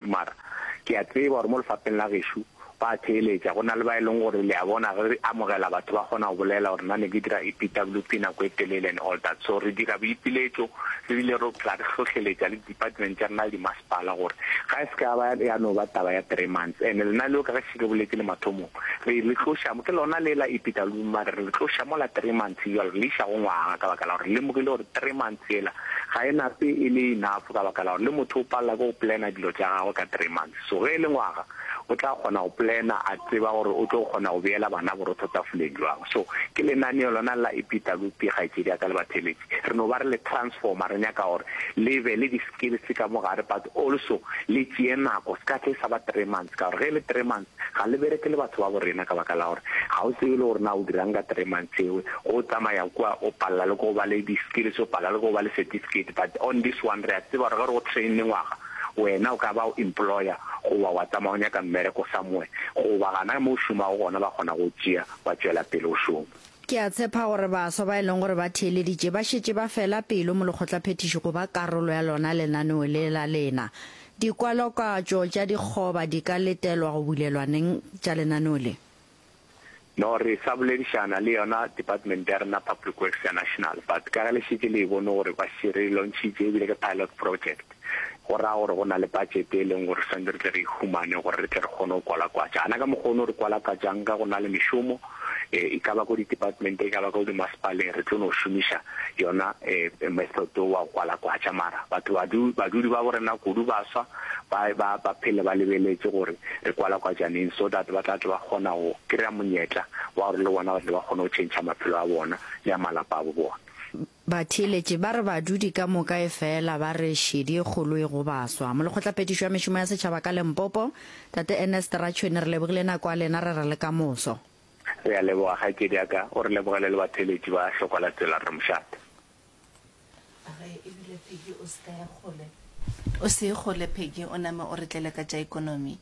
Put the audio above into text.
Mara, ke a tseba gore mo lefapheng la gešo go a theeletša, go na le ba e leng gore, le a bona, ge re amogela batho ba kgona go bolela gore nna ne ke dira EPWP nako e telele and all that. So re dira boipiletšo, re bile re phela re hlohleletša le di-department tša rena le dimasepala gore ga e se ka ya ba ya no ba taba ya three months. And lena leo ka ge šetše ke boletše le mathomong, re le tloša mo, ke lona le la EPWP, mara re le tloša mola three months bjalo re le iša go ngwaga ka baka la gore re lemogile gore three months, Tsela ga e nape e le enough ka baka la gore le motho o palela ke go plana dilo tša gagwe ka three months. So ge e le ngwaga o tla kgona go plana a tseba gore o tlo kgona go beela bana borotho tafoleng jwang. So ke lenaneo lona la Epitalopi kgaetšedi ya ka le batheeletši. Re no ba re le transformer re nyaka gore le be le di skills ka mo gare but also le tšee nako se ka tle e sa ba three months ka gore ge e le three months Ga le bereke le batho ba bo rena ka baka la gore ga o tsebe le gore na o dirang ka three months eo. Ge o tsamaya kua o palela le ko ba le di skills, o palela le ko ba le certificate but on this one re a tseba gore ge re go train-ne ngwaga wena o ka ba o employer goba wa tsamaya o nyaka mmereko somewhere goba gana mo o šomago gona ba kgona go o tšea wa tšwela pele o šoma. Ke a tshepa gore baswa ba e leng gore ba theeleditše ba šetše ba fela pelo mo lekgotlaphethiši go ba karolo ya lona lenaneo le la lena. Dikwalokatšo tša dikgoba di ka letelwa go bulelwaneng tša lenaneo le? No re sa boledišana le yona department ya rena public works ya national but ka ge le šetše le e bone gore ba šetše re e lontšhitše ebile ke pilot project go raya gore go na le budget e leng gore swantse re tle re e humane gore re tle re kgone go kwalakwatša ana ka mokgwa o no re kwalakatšang ka go na le mešomo e ka ba ko di-department, e ka ba ko dimasepaleng, re tlo no šomiša yona um method o wa go kwala kwatša. Mara batho badu, badudi ba bo rena kudu ba swa, ba, ba, ba phele ba lebeletše gore re kwala kwatša neng, so that ba tla tle ba kgona go kry-a monyetla wa gore le bona ba tle ba kgone go tšhentšha maphelo a bona le a malapa a bo bona. Batheeletši ba re badudi ka moka e fela ba re šedi e kgolo e go baswa. Molekgotlapetiši wa Mešomo ya Setšhaba ka Lempopo, Tate Ernest Ratšhwene, re lebogile nako ya lena, re re le ka moso. Re a leboga kgaetšedi ya ka, o re lebogele le batheeletši ba Hlokwa la Tsela Rre Mošate. A re ebile Peggy o se ka ya kgole, o se ye kgole Peggy, o name o re tlele ka tša ekonomi.